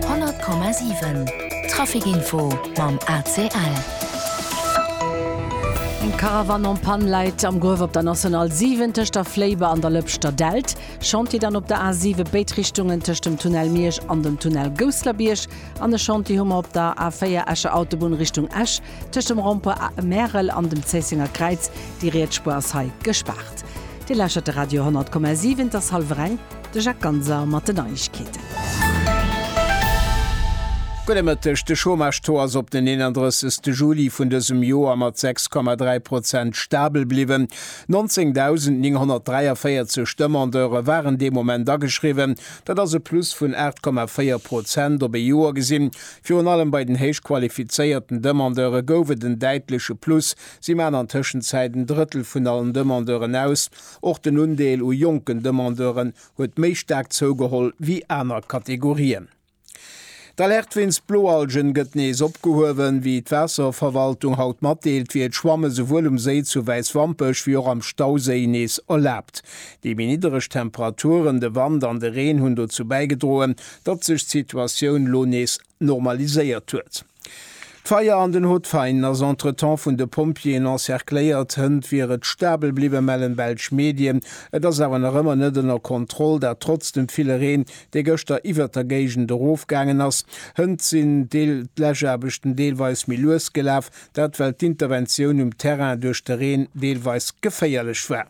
100,7 Trafic Info mam ACL. Eng Caravane en panne läit am Gruef op der National 7 tëscht der Fléiber an der Lëpschter Delt. Chantier dann op der A 7 béid Richtungen tëscht dem Tunnel Miersch an dem Tunnel Gousslerbierg. An e Chantier hu mer op der A 4 Escher Autobunn Richtung Esch tëscht dem Rond-point Märel an dem Zéissenger Kräiz. Déi riets Spuer ass hei gespaart. Dir lauschtert de Radio 100,7, et ass hallwer eng. De Jacques Ganser mat den Neiegkeeten. Gudde Mëtteg, De Chômage-Taux ass op den 31 Juli vun dësem Joer mat 6,3 Prozent stabel bliwwen. 19.943 Demandeure waren dee Moment ageschriwwen, dat ass e Plus vun 8,4 Prozent op ee Joer gesinn. Virun allem bei den héich qualifizéierten Demandeure gouf et en däitleche Plus, si maachen an Tëschenzäit en Drëttel vun allen Demandeuren aus. Och den Undeel u jonken Demandeuren huet méi staark zougeholl wéi aner Kategorien. D'Alerte wéinst Bloalgen gëtt nees opgehuewen. Wéi d'Waasserverwaltung haut matdeelt, wier d'Schwamme souwuel um Séi zu Wäiswampech wéi och am Stauséi nees erlaabt. Déi méi niddereg Temperaturen, de Wand an de Reen hunn dozou bäigedroen, datt sech d'Situatioun lo nees normaliséiert huet. D'Feier an den Hotvein ass entretemps vun de Pompjeeën encercléiert. Hënt wier et stabel bliwwen, mellen belsch Medien. Et ass awer nach ëmmer net ënner Kontroll, dat trotz dem ville Reen, dee gëschter iwwert der Géigend erofgaangen ass. Hënt sinn d'Läschaarbechten deelweis méi lues gelaf, dat well d'Interventioun um Terrain duerch de Reen deelweis geféierlech war.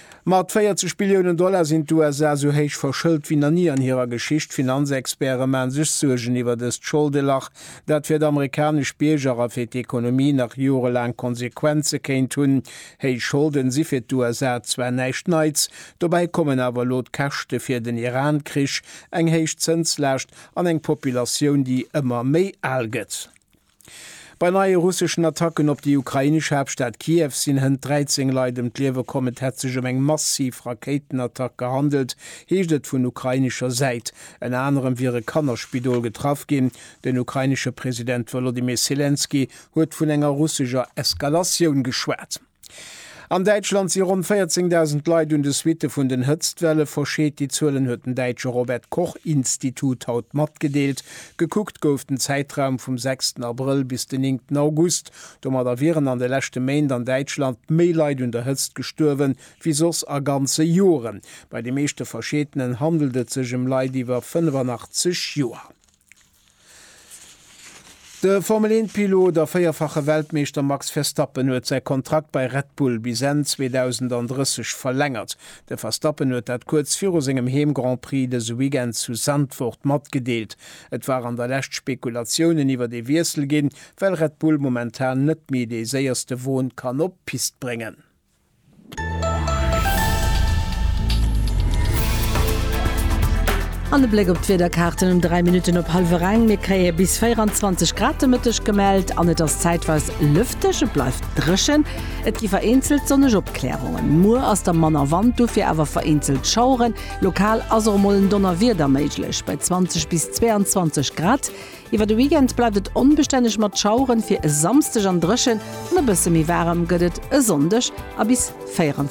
Mat 40 Billiounen Dollar sinn d'USA esou héich verschëlt wéi nach ni an hirer Geschicht. D'Finanzexperte maachen sech Suergen iwwer dëst Scholdelach, dat fir d'amerikanesch Bierger a fir d'Ekonomie nach jorelaang Konsequenze kéint hunn. Héich Scholden si fir d'USA zwar näischt Neits, dobäi kommen awer elo d'Käschte fir den Iran-Krich, eng héich Zënslaascht an eng Populatioun, déi ëmmer méi al gëtt. Bei neie russeschen Attacken op déi ukrainesch Haaptstad Kiew sinn hënt 13 Leit ëm d'Liewe komm. Et hätt sech ëm eng massiv Rakéitenattack gehandelt, heescht et vun ukrainescher Säit. Ënner anerem wier e Kannerspidol getraff ginn. Den ukrainesche President Wolodymyr Selenskyj huet vun enger russescher Eskalatioun geschwat. An Däitschland si ronn 14.000 Leit un de Suitte vun den Hëtztwelle verscheet. Déi Zuelen huet den däitsche Robert Koch Institut haut matgedeelt. Gekuckt gouf den Zäitraum vum 6 ten Abrëll bis den 9 ten August. Domadder wieren an de leschte Méint an Däitschland méi Leit un der Hëtzt gestuerwen, wéi soss a ganze Joren. Bei de meeschte Verscheetenen handelt et sech ëm Leit iwwer 85 Joer. De Formel-1-Pilot a véierfache Weltmeeschter Max Verstappen huet säi Kontrakt bei Red Bull bis Enn 2030 verlängert. De Verstappen huet dat kuerz viru sengem Heem-Grand-Prix dëse Weekend zu Zandvoort matgedeelt. Et waren der lescht Spekulatiounen iwwert ee Wiessel ginn, well Red Bull momentan net méi dee séierste Won kann op d'Pist bréngen. An e Bléck op d'Wiederkaarten um 3 Minutten op hallwer eng. Mir kréie bis 24 Grad de Mëtteg gemellt an et ass zäitweis lëfteg, et bleift dréchen. Et gi vereenzelt sonneg Opklärungen. Muer ass da manner Wand, dofir awer vereenzelt Schaueren. Lokal ass och mol en Donnerwieder méiglech bei 20 bis 22 Grad. Iwwer de Weekend bleift et onbestänneg mat Schaueren, fir e Samsdeg an dréchen an e bësse méi waarem gëtt et e Sonndeg a bis 24.